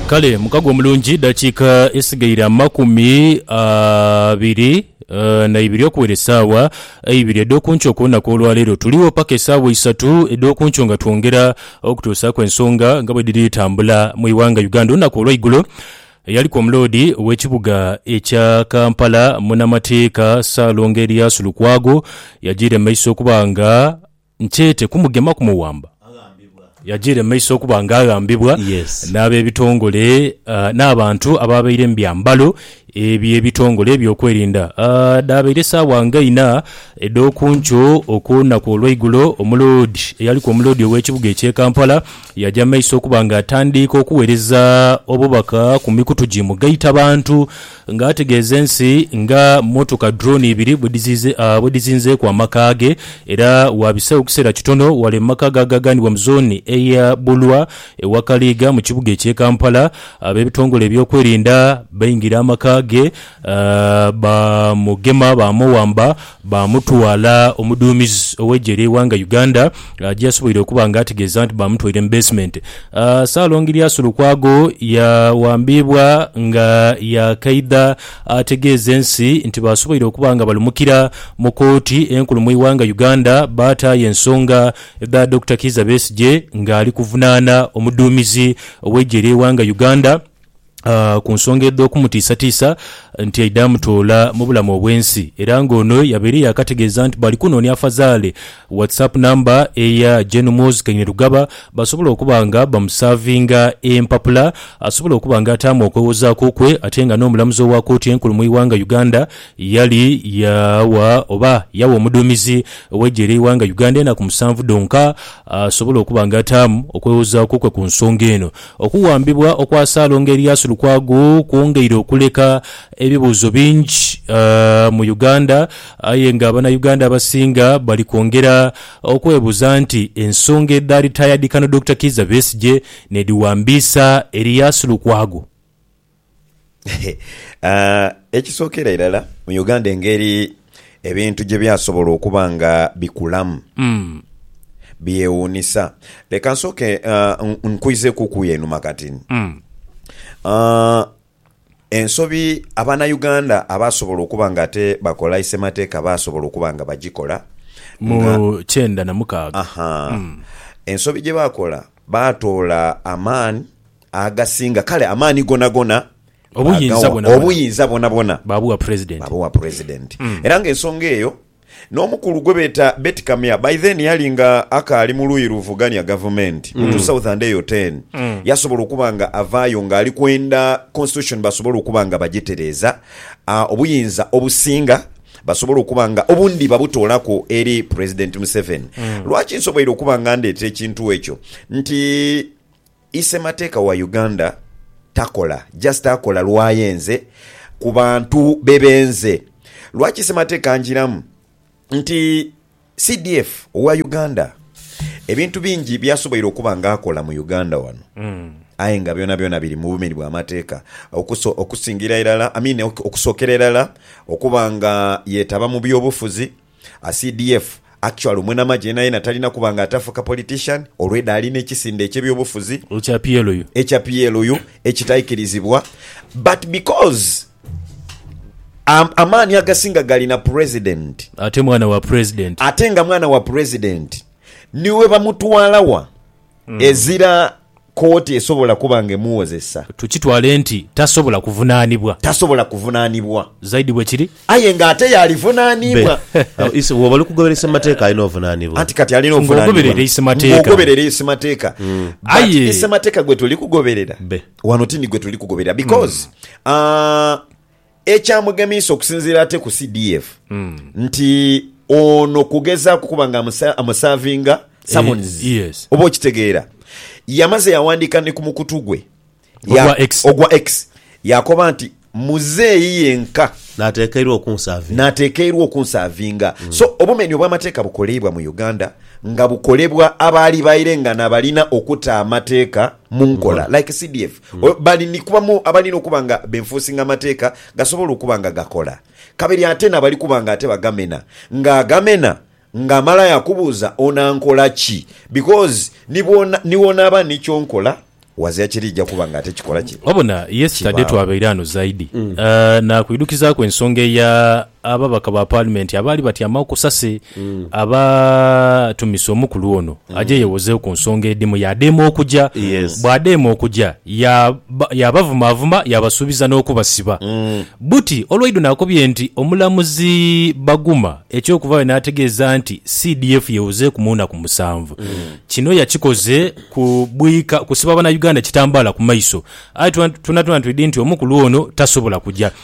Kale mukago omulungi, dakiika esigaire amakumi abiri na ibiri okuwera esaawa eibiri edh'okunkyo ku lunaku olwaleero. Tuligho paka esaawa isatu edh'okunkyo nga twongera okutuusaaku ensonga nga bwedhiri tambula mu ighanga Uganda. Olunaku olweigulo eyaliku omuloodi ow'ekibuga ekya Kampala munamateeka Ssaalongo Erias Lukwago yajiire mu maiso okuba nga Nkyete kumugema kumuwamba, yajiire mu maiso okuba nga aghambibwa Yes. n'abebitongole ah, n'abantu abaabaire mu byambalo eby'ebitongole ebyokwerinda ah, dhaabaire saawa nga ina edh'oku nkyo okw'olunaku olweigulo. Omuloodi eyaliku omuloodi ow'ekibuga eky'e Kampala yaja mu maiso okuba nga atandiika okuwereza obubaka ku mikutu gi mugaitabantu. Nga ategeeza ensi nga mmotoka drone ibiri bwe dhizinzeeku amaka ge era waabiseegho kiseera kitono wale mu maka ga gaaganibwa mu zooni eya Bulwa e Wakaliga mu kibuga eky'e Kampala, ab'ebitongole ebyokwerinda baingira amaka ge baamugema baamuwamba Baamutwala omuduumizi ow'eggye ery'eighanga Uganda gyeyasoboire okuba nga ategeeza nti baamutwaire mu basement. Ssalongi Lyasi Lukwago yawambiibwa nga yaakaidha ategeeze ensi nti baasoboire okuba nga balumukira mu kooti enkulu mu ighanga Uganda baataayo ensonga dha Dokita Kiiza Besigye ng'ali kuvunaana omuduumizi ow'eggye ery'eighanga Uganda ku nsonga edh'okumutiisatiisa nti aidha amutoola mu bulamu obw'ensi era ng'ono yabaire yaakategeeza nti bali kunoonia afazaale WhatsApp namba eya Gen Muhoozi Kainerugaba basobole okuba nga bamusaavinga empapula asobole okuba nga ataamu okwewozaaku kwe ate nga n'omulamuzi owa kooti enkulu mu iwanga Uganda yali yawa oba yawa omuduumizi w'eggye ly'eiwanga Uganda enaku musanvu dhonka asobole okuba nga ataamu okwewozaaku kwe ku nsonga eno. Okuwambibwa okwa Salongo Erias Lukwago kwongeire okuleka ebibuuzo bingi mu Uganda aye nga Bannayuganda abasinga bali kwongera okwebuuza nti ensonga edhaali taayadhikano Dokita Kiiza Besigye n'edhiwambiisa Erias Lukwago. Ekisookera irala mu Uganda engeri ebintu gye byasobola okuba nga bikulamu byewuunisa. Leka nsooke nkwizeekuuku y'enuma kati. Ensobi Abanauganda abaasobola okuba nga ate bakola isemateeka baasobola okuba nga bagikola. Mu kyenda na mukaaga. Aha. Ensobi gye baakola, baatoola amaani Agasinga, kale amaani gonagona Obuyinza aghawa, bwonabwona. obuyinza bwonabwona Baabugha Pulezidenti. baabugha Pulezidenti. Era ng'ensonga eyo, n'omukulu gwe beeta Beti Kamya, by then yali nga akaali mu luuyi luvugania Gavumenti, mu 2010, yasobola okuba nga avaayo ng'ali kwenda Constitution basobole okuba nga bagitereeza, ah, obuyinza obusinga basobole okuba nga obundi babutoolaku eri Pulezidenti Museveni. Lwaki nsoboire okuba nga ndeeta ekintu ekyo? Nti Ise mateeka wa Uganda takola just akola lwayenze ku bantu be benze lwaki semateeka anjiramu nti CDF owa Uganda ebintu bingi byasoboire okuba nga akola mu Uganda wano aye nga byona byona biri mubumeri bwa mateeka okuso okusingira irala I mean okusokera irala okuba nga yetaba mu byobufuzi A CDF actually omwenamagye yenayena talina kuba nga atafuka politician olweda alina ekisinde ekye byobufuzi Ekya PLU. ekya PLU ekitaikirizibwa but because a amaani agasinga gali na president Ate mwana wa president. ate nga mwana wa president niwebamutwala wa ezira kkooti esobola kuba nga emuwozesa. Tukitwale nti tasobola kuvunaanibwa. Tasobola kuvunaanibwa. Zaidi bwe kiri. Aye nga ate y'alivunaanibwa. Be. Bw'oba oli kugoberesa amateeka alina ovunaanibwa. Anti kati alina ovunaanibwa. Ng'ogoberera isemateeka. Ng'ogoberera isemateeka. But Aye. isemateeka gwe tuli kugoberera Be. wano ti ni gwe tuli kugoberera because, aah, Ekyamugemiisa okusinziira ate ku CDF nti ono kugezaaku kuba nga amusa- amusavinga summons. Eh, yes. Oba okitegeera. Yamaze yawandiika ni ku mukutu gwe ya- Ogwa X. ogwa X yakoba nti muzeeyi yenka Natekeirwa okunsavinga. natekeirwa okunsavinga so obumenyi obwamateeka bukoleibwa mu uganda nga bukolebwa abaali baire nga nabalina okuta amateeka munkola like cdf Oyo bali ni kuba mu abalina okuba nga benfuusinga amateeka gasobola okuba nga gakola, kabiri ate n'abali kuba nga ate bagamena. Ng'agamena ng'amala yaakubuuza onankola ki? Because ni bwona ni wonaaba ni ky'onkola wazia kiriija kuba nga ate kikola ki? Wabona, yesterday Kibaawo. twabaire ano zaidi, ah, naakwidhukizaaku ensonga eya. Ababaka ba Paalimenti abaali batyamagho ku sase abaatumisa omukulu ono aje yewozeegho ku nsonga edhimu yaadema okuja. Yes. Bw'adema okuja yaaba yaabavumaavuma yaabasuubiza n'okubasiba. Buti olwaidho naakobye nti omulamuzi Baguma eky'okuvaayo n'ategeeza nti CDF yewozeeku mu naku musanvu kino yakikoze ku bwika kusiba Bannayuganda kitambaala ku maiso aye twonatwona twidhi nti omukulu ono tasobola kuja.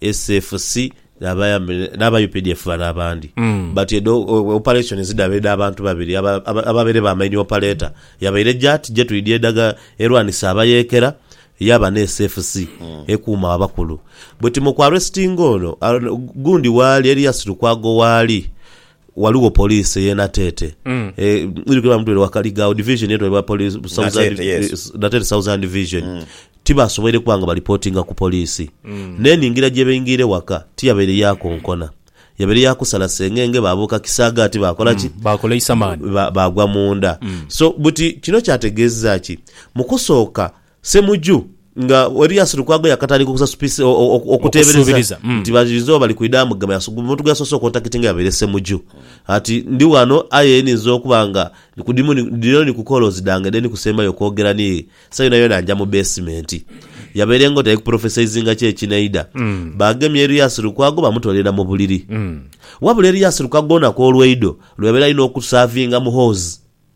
SFC n'aba updf bano abandi but edho operations dhaba edha bantu babiri ababaire ba main operator yabaire jat jetwidhi edhaga erwanisa abayekera yaba ne SFC ekuuma abakulu but mu ku arrestinga ono gundi waali eriyo asitukwa gho waali Ghaligho poliisi ey'e Nateete mwidhi kwebaa mutwire Wakaliga, division eyo twebaa poliisi Nateete, yes. Nateete Southern Division. Tibasoboire kuba nga balipotinga ku poliisi. N'enhingira gye baingiira ewaka tiyabaire ya konkona. Yabaire ya kusala sengenge baabuuka kisaagaati baakola ki? Baakola eisamani. Ba- baagwa munda. So buti kino kyategeezezza ki? Mu kusooka Ssemuju nga Erias Lukwago yakatandika okusasupisa okuteebereza nti bayinza oba bali kwidha amugema, omuntu gwe yasoose okontakitinga yabaire Ssemuju. Ati, Ndi ghano aye nninza okuba nga ndi ku dimu, dhino ni ku koolozi dhange dhe ndikusembayo okwogera ni ye. Esawa yonayona nja mu beesimenti. Yabaire ng'oti ali kupulofesaizinga ki ekinaidha. Baagemye Erias Lukwago bamutoolera mu buliri. Wabula Erias Lukwago olunaku olweidho lwe yabaire alina okusaavinga Muhoozi,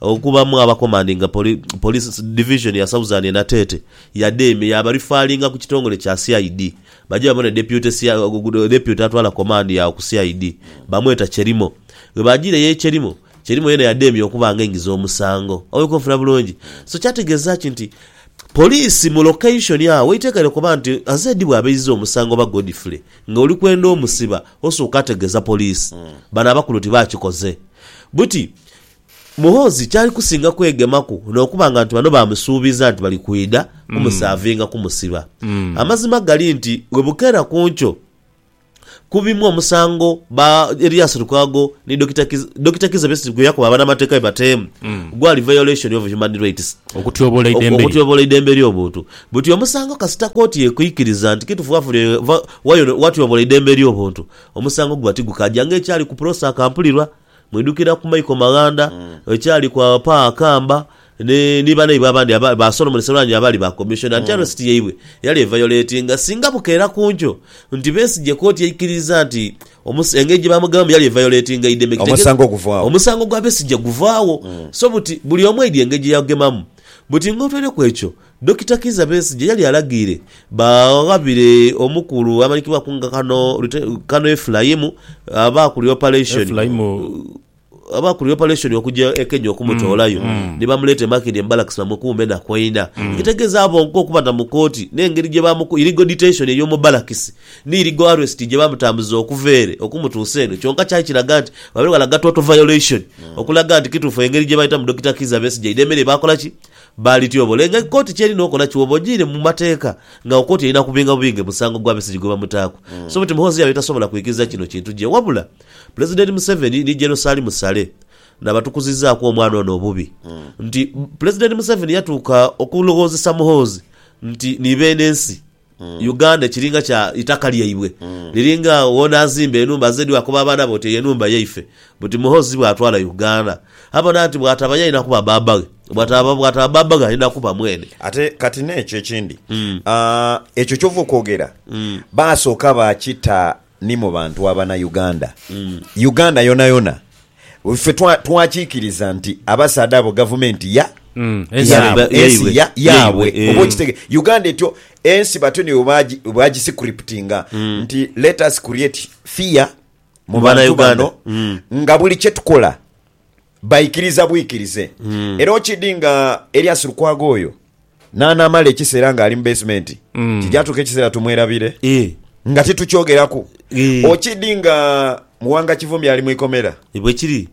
Okubamu aba komandinga Police Division ya Southern e Nateete, Yademe yaabarifaalinga ku kitongole kya CID baje babone Deputy atwala komandi agho ku CID bamweta Chelimo. Bwe baajiire ye Chelimo, Chelimo yeena yademya okuba nga aingiza omusango. Oweek onfuna bulungi? So kyategeeza ki nti Poliisi mu location agho weitekeire kuba nti Azedi bw'aba eizza omusango oba Godfrey nga oli kwenda omusiba osooka ategeeza Poliisi bano abakulu ti baakikoze? Buti Muhoozi kyali kusinga kwegemaku n'okuba nga nti bano baamusuubiza nti bali kwidha kumusaavinga kumusiba. Amazima gali nti bwebukeera ku nkyo ku bimu omusango ba Erias Lukwago ni Dokita Dokita Kizza Besigye gwe yakoba banamateeka be bateemu gwali violation of human rights, Okutyobola eidembe lye. okutyobola eidembe ly'obuntu. Buti omusango kasita kooti ekwikiriza nti kitufu wafunye va- wayono- watyobola eidembe ly'obuntu, omusango guba tigukaja nga ekyali ku Prosser Kampulirwa. Mwidhukira ku Michael Maghanda bwekyali ku Pa Akamba ni banaibwe abandi ba Solomon Serwanja abaali ba Commissioner nti arrest yaibwe yali evayoletinga singa bukeera ku nkyo nti Besigye kooti yaikiriza nti engeri gyebamugabamu yali evayoletinga eideme kitegeza omusango gwa Besigye guvaagho so buti buli omu aidye engeri gyeyagugemamu buti ng'otwaireku ekyo Dokita Kizza Besigye yali alagiire baghabire omukulu amanyikibwaku nga Kano Lute Kano Efulaimu abaakulira opareshoni opareshoni okugya e Kenya okumutoolayo ni bamuleeta e Makindye mu balakisi bamukuume na kwenda ekitegeeza bonka okuba na mu kooti n'engeri gye baamuku irigo diteshoni ey'omu balakisi ni irigo aresiti gye baamutambuza okuva ere okumutuusa eno kyonka kyali kiraga nti babeire balaga toto vayoleshoni okulaga nti kituufu engeri gye baayitamu Dokita Kizza Besigye idhemere baakola ki? Baalityobola. Aye nga kooti kyeri nokola kyoba ojiire mu mateeka nga kooti erina kubinga bubinge musango gwa Besigye gwebamutaaku. So but Muhoozi yabaire tasobola kwikiriza kino kintu gye wabula Pulezidenti Museveni ni Gen Salim Saleh nabatukuzizaaku omwana ono obubi nti Pulezidenti Museveni yatuuka okulowoozesa Muhoozi nti ni beene nsi. Uganda ekiringa kya itaka lyaibwe liringa agho wona azimba enhumba ze dwakoba abaana be oti eyo enhumba yaife buti muhozi bwatwala Uganda abona nti bwataba yalina kuba baba ghe bwataba bwataba baba ghe alina kuba mwene. Ate kati nekyo ekindi aa ekyo kyova okwogera baasooka baakita Ni mu bantu abana Uganda. Uganda yonayona ffe twakikiriza nti abasaadha abo gavumenti ya. Yaabwe. Ensi ya. Yaabwe. Oba okitegera. Uganda etyo ensi batyo nibo baagiscriptinga nti let us create fear mu bantu bano nga buli kyetukola Baikiriza bwikirize. Era okidi nga Elias Lukwago oyo n'anaamala ekiseera ng'ali mu beesimenti, kija atuuka ekiseera tumwerabire Ii, nga titukyogeraku. Ii. Okidi nga Muwanga Kivumbi ali mu ikomera, Ni bwe kiri.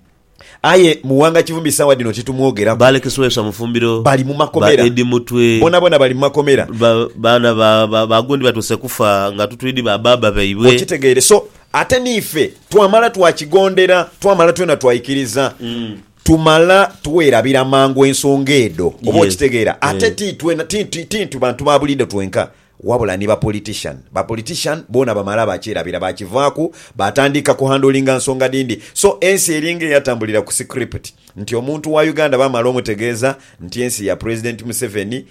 aye Muwanga Kivumbi saawa dhino titumwogeraku. Ba Alex Lwesa Mufumbiro, Bali mu ba makomera. Eddie Mutwe, Bonabona bali mu makomera. ba- baana ba- ba- ba gundi batuuse kufa nga tutwidi ba baaba baibwe. Okitegeere. So, Ate n'ife twamala twakigondera, twamala twena twaikiriza, tumala twerabira mangu ensonga edho. Oba Yes. okitegeera? Ate Eh. ti twena, ti, ti, ti nti bantu ba buliido twenka, wabula ni bapolitician. Bapolitician boona bamala baakyerabira, baakivaaku, baatandika kuhandlinga nsonga dhindi. So ensi eringa eyatambulira ku script nti omuntu wa Uganda bamala omutegeeza nti ensi ya President Museveni,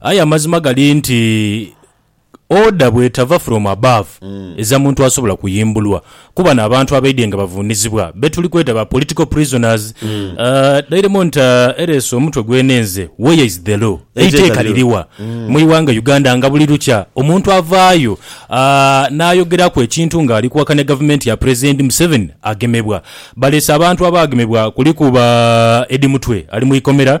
Aye amazima gali nti order bwetava from above eza muntu asobola kuyimbulwa ku bano abantu abaidye nga bavunizibwa betuli kweta ba political prisoners dairemo nti ereese omutwe gwenenze where is the law? Eiteeka liriwa mwiwanga Uganda nga buli lukya omuntu avaayo nayogeraku ekintu nga ali kuwakanya gavumenti ya president Museveni agemebwa. Baleese abantu abagemebwa kuliku ba Eddie Mutwe ali mwikomera.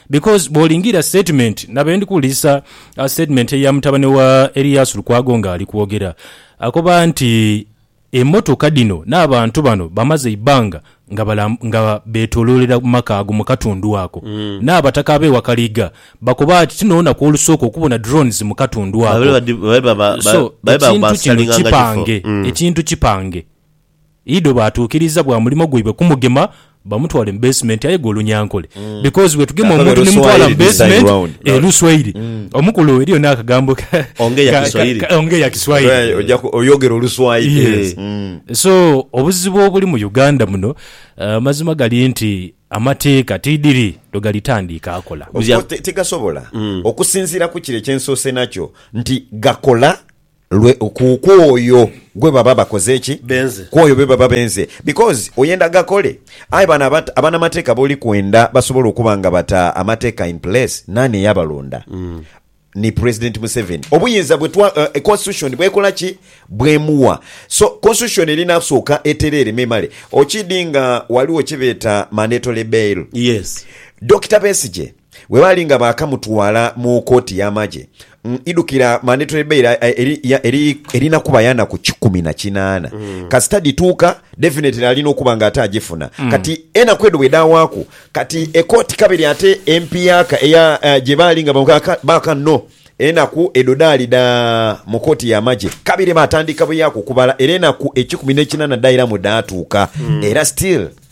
Because bwolingira statement na bendi kuwulirisa statement eya mutabane wa Erias Lukwago nga ali kwogera akoba nti emotoka dhino n'abantu bano bamaze eibbanga nga betoloolera mu maka ago mu katundu ako. N'abataka ab'e Wakaliga bakoba nti tinho lunaku olusooka okubona drones mu katundu ako. So ekintu kino kipange, ekintu kipange. Ido baatuukiriza bwa mulimo gwaibwe kumugema bamutwale mu basement aye gwe olunyankole because bwetugema Kakabe omuntu nemutwala mu Luswayiri this time basement round. eh luswayiri omukulu eriyo nakagambo ka Ongea ka- Kiswahili. ka- ongea kiswahili Eh, oja ku- oyogera oluswayiri Yes. eh, mm. so obuzibu obuli mu uganda muno eh, amazima gali nti amateeka tidiri lwegalitandiika akola Obwo te- tegasobola okusinziira ku kire kyensoose nakyo nti gakola Lwe ku, ku oyo gwe baba bakoze ki? Benze. Ku oyo be baba benze. Because oyenda gakole. Aye bano abat, abanamateeka b'oli kwenda basobola okuba nga bata amateeka in place, naani eyabalonda? Ni President Museveni. Obuyinza bwe twa, uh, Constitution bw'ekola ki? Bw'emuwa. So, Constitution erina kusooka etereere me emale. Okidi nga waliwo kye beeta mandatory bail. Yes. Dokita Besigye. Bwe baali nga baakamutwala mu kooti y'amagye, idhukira mani twebeire erina kuba ya naku kikumi na kinaana kasita dhituuka, definitely alina okuba nga ate agifuna. Kati enaku edho bwe dhaawaaku, kati ekooti kabiri ate empiaka eya gye baali nga baaka no enaku edho dhaali dha mu kooti y'amagye, kabiri baatandika buyaaku okubala era enaku ekikumi n'ekinaana dhairamu dhaatuuka era still.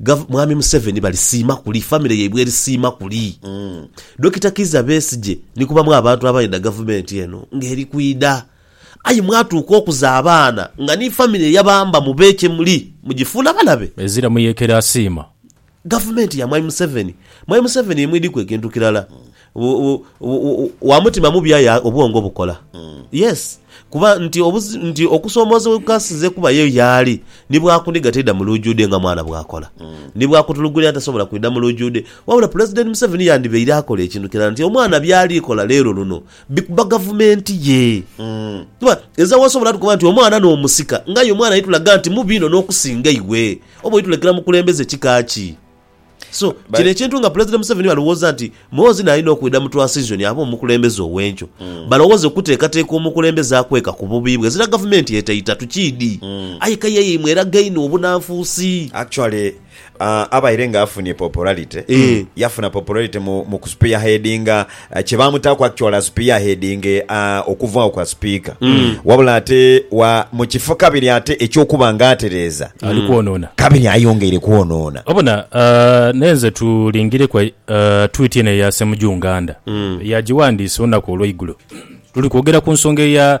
Gov Mwami Museveni balisiima kuli, famire yaibwe erisiima kuli. Dokita Kiiza Besigye ni kubamu abantu abaidha gavumenti eno nga eri kwidha aye mwatuuka okuza abaana nga ni famire eyabamba mube kye muli mugifuula balabe. Ezira Muyekera asiima. Gavumenti ya Mwami Museveni. Mwami Museveni ye mwidhi ku ekintu kirala. wa mutima mubi aye obwongo bukola. Yes, kuba nti nti okusoomoozebwa kukasinze kubayo y'ali, ni bwakuniga taidha mu luujude nga mwana bw'akola. Ni bwakutulugunya tasobola kwidha mu luujude. Wabula Pulezidenti Museveni yandibaire akola ekintu kirala nti omwana by'ali kola leero luno bikuba gavumenti ye. Kuba ezira w'osobola tukoba nti omwana n'omusika ng'aye omwana aitulaga nti mubi inho n'okusinga iwe. Oba oitulekera mukulembeze kika ki? So, kino ekintu nga Pulezidenti Museveni alowooza nti Muhoozi naye alina okwidha mu twansizoni abe omukulembeze ow'enkyo, balowooze okuteekateeka omukulembeze akweka ku bubi bwe. Zira gavumenti etaita, tukiidhi. Aye kaye yaimwe eraga inho obunanfuusi. Actually, aah, abaire nga afunie popularity, yafuna popularity mu, mu ku spearheadinga kye baamutaaku actual as peerhead nge a okuvaawo kwa sipiika wabula ate wa mu kifo kabiri ate eky'okuba nga atereeza Ali kwonoona. kabiri ayongeire kwonoona. Obona ah, naye nze tulingire ku eh, tweet eno eya Ssemujju Nganda eyagiwandiise olunaku olweigulo. Tuli kwogera ku nsonga eya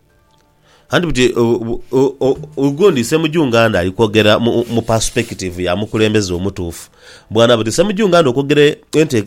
Anti buti ogundi Ssemujju Nganda ali kwogera mu perspective ya mukulembeze omutuufu bw'anaaba ati, Ssemujju Nganda okwogera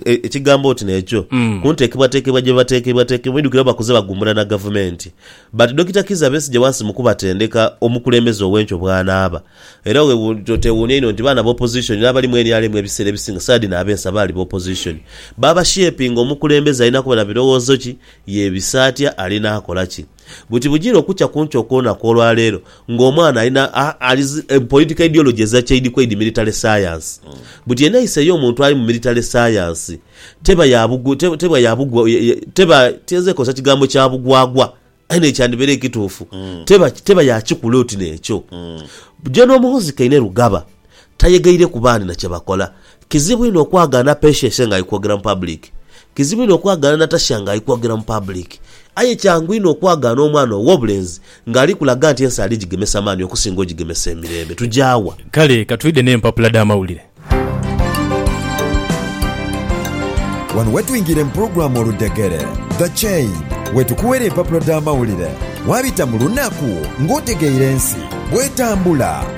ekigambo oti n'ekyo ku nteekebwateekebwa gye bateekebwateekebwa, oidhukire oba bakuze bagumbula na Gavumenti but Dokita Kizza Besigye wansi mu kubatendeka omukulembeze ow'enkyo bw'anaaba era toteewuunya inho nti baana ba opposition n'abali mu nrm ebiseera ebisinga saadini ab'ensa baali ba opposition baabashepinga omukulembeze alina kuba na birowoozo ki Yeebisa atya? Alinaakola ki? Buti bujiire okukya ku nkya okw'olunaku olwa leero, ng'omwana alina a, ali zi, e, political ideology eza kyeidhikweidhi, military science. Buti enhayisa ey'omuntu ali mu military science teba ya bugu, te, teba ya bugwa, ya, ya, teba, tiyinza kozesa kigambo kya bugwagwa, aye n'ekyo kyandibaire ekituufu, teba, teba ya kikula oti n'ekyo. Gen. Muhoozi Kainerugaba. Tayegaireku bandi na kye bakola. Kizibu inho okwagaana Patience ng'ali kwogera mu paabuliki. Kizibu inho okwagaana Natasha ng'ali kwogera mu paabuliki. Aye kyangu inho okwagaana omwana ow'obulenzi ng'ali kulaga nti ensi ali gigemesa maani okusinga ogigemesa emirembe. Tugya wa? Kale ka twidhe n'empapula dh'amawulire. Wano we twingira mu pulogulaamu Oludhegere, The Chain, we tukuwera empapula dh'amawulire. Waabita mu lunaku ng'otegeire ensi bw'etambula.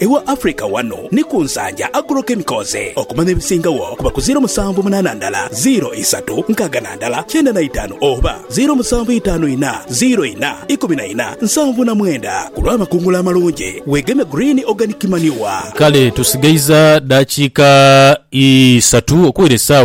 Ewa Africa wano ni ku Nsanja Agro Chemicals okumanya ebisingagho kuba ku ziro musanvu munaana ndala ziro isatu nkaaga na ndala kyenda na itaanu oba ziro musanvu itaanu ina ziro ina ikumi na ina nsanvu na mwenda ku lw'amakungula amalungi weegeme Green Organic Manure. Kale tusigaiza dakiika isatu okuwera esaawa.